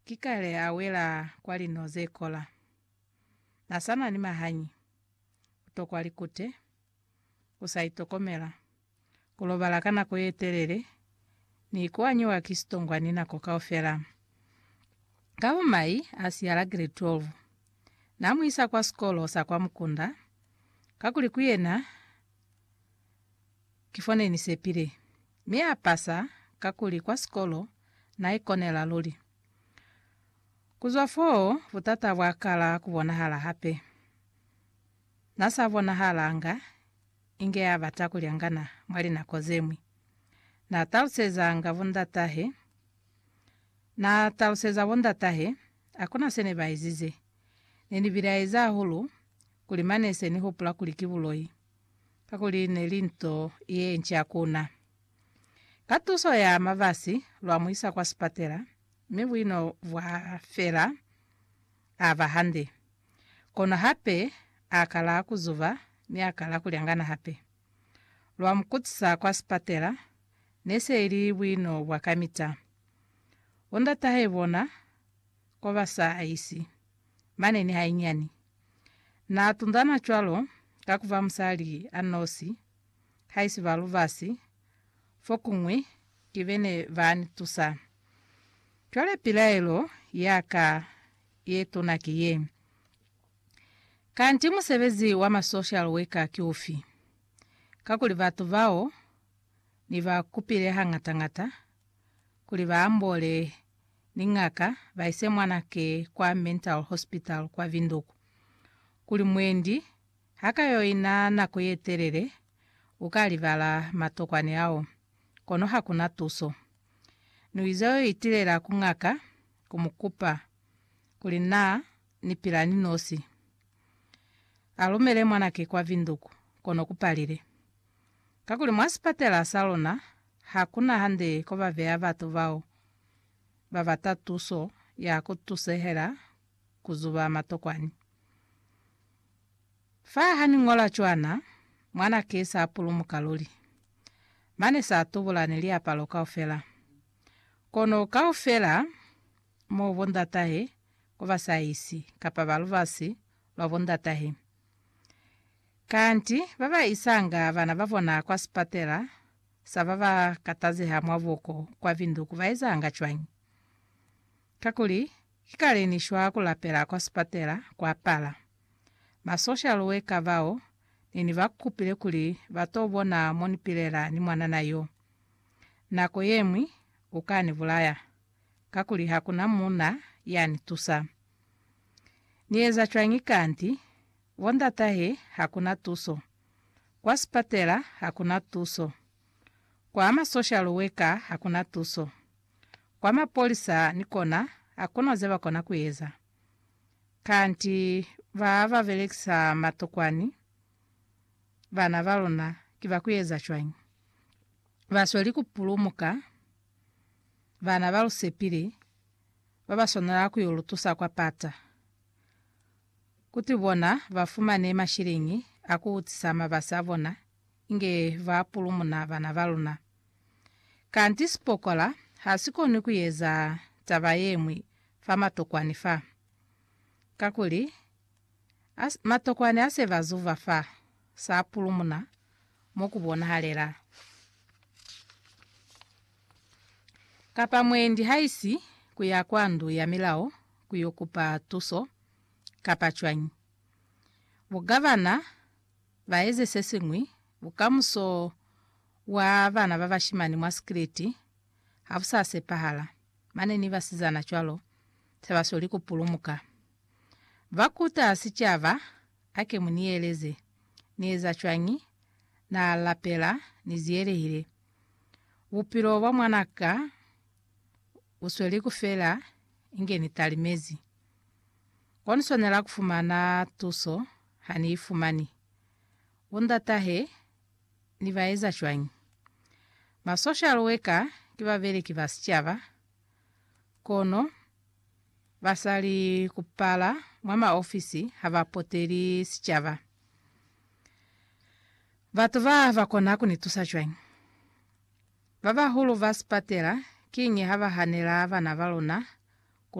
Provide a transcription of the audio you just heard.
Ki kale a wela kwa lino ze kola. Na sa na ni mahañi, ku tokwa likute, ku sa itokomela, ku lobala ka nako ye telele, ni ku anyiwa ki sitongwani nako kaufela. Ka bo mai a siya la grade 12, na mu isa kwa sikolo sa kwa mukunda, kakuli ku yena Ki fo ne ni sepile. Mi a pasa, kakuli kwa sikolo na ikonela luli. Ku zwa foo, butata bwa kala ku bonahala hape. Na sa bonahalanga inge ya bata ku lyangana mwa linako ze ñwi. Na talusezanga bondatahe, na taluseza bondatahe, hakuna se ne ba ezize. Ne ni bilaezi hahulu, kuli mane se ni hupula kuli ki buloi. kakuli ne li nto ye nca ku na. Ka tuso ya mabasi, lwa mu isa kwa sipatela, mi buino bwa fela, a ba hande. Kono hape a kala ku zuba mi a kala ku lyangana hape. Lwa mu kutisa kwa sipatela, ne se i li buino bwa kamita. Bo ndatahai bona ko ba sa isi. mane ni hainyani. Na tunzana cwalo ka kuba musali a nosi, haisiba lubasi, fokuñwi ki bene ba ni tusa. Cwale pilaelo ya ka ye tuna ki ye, Kanti musebezi wa ma social worker ki ufi? Kakuli batu bao ni ba kupile hangata-ngata kuli ba ambole ni ngaka ba ise mwana ke kwa mental hospital kwa Windhoek kuli mwendi ha ka yo ina nako ye telele u ka libala matokwani ao kono ha ku na tuso. Ni ize yo itilela ku ngaka ku mu kupa kuli na ni pila ni nosi. A lumele mwana ke kwa Windhoek kono ku palile. Kakuli mwa sipatela sa luna ha ku na hande ko ba beya batu bao ba bata tuso ya ku tusehela ku zuba matokwani. Fa ha ni ñola cwana, mwana ki sa pulumuka luli. Mane sa tubula ni liapalo kaufela. Kono kaufela mo bo ndatahe ko ba sa isi, kapa ba lubasi lwa bo ndatahe. Kanti ba ba isanga bana ba bona kwa sipatela sa ba ba katazeha mwa buko kwa Windhoek ba ezanga cwañi? Kakuli, ki kale ni shwa ku lapela kwa sipatela kwa pala. Ba social worker bao ne ni ba kupile kuli ba t'o bona mo ni pilela ni mwanana yo. Nako ye ñwi u ka ni bulaya, kakuli ha ku na muuna ya ni tusa. Ni eza cwañi kanti? Bo ndatahe ha ku na tuso. Kwa sipatela ha ku na tuso. Kwa ma social worker ha ku na tuso. Kwa mapolisa ni kona ha ku na ze ba kona ku eza. Kanti ba ba belekisa matokwani bana ba luna ki ba ku eza cwañi? Ba sweli ku pulumuka bana ba lu sepile ba ba swanela ku yo lu tusa kwa pata. Kuti bona ba fumane mashiliñi a ku utisa mabasi a bona inge ba pulumuna bana ba luna. Kanti sipokola ha si koni ku eza taba ye ñwi fa matokwani fa. Kakuli, a, matokwani a se ba zuva fa, sa pulumuna mo ku bonahalela. Kapa mwendi haisi ku ya kwa ndu ya milao, ku yo kupa tuso kapa cwañi. Bu ka bana ba eze se siñwi, bukamuso bwa bana ba bashimani mwa sikiliti ha bu sa sepahala, mane ni basizana cwalo, se ba sweli ku pulumuka. Ba kuta sicaba, Ake mu ni eleze, Ni eza cwañi? Na lapela, Ni ziyelehile. Bupilo bwa mwana ka U sweli ku fela inge ni talimezi. Ko ni swanela ku fumana tuso ha ni i fumani. U nda tahe, ni ba eza cwañi? Ma social worker ki babeleki ba sicaba, kono ba sa li ku pala mwa ma ofisi ha ba poteli sicaba. Batu ba ba kona ku ni tusa cwañi? Babahulu ba sipatela kiñi haba hanela bana baluna ku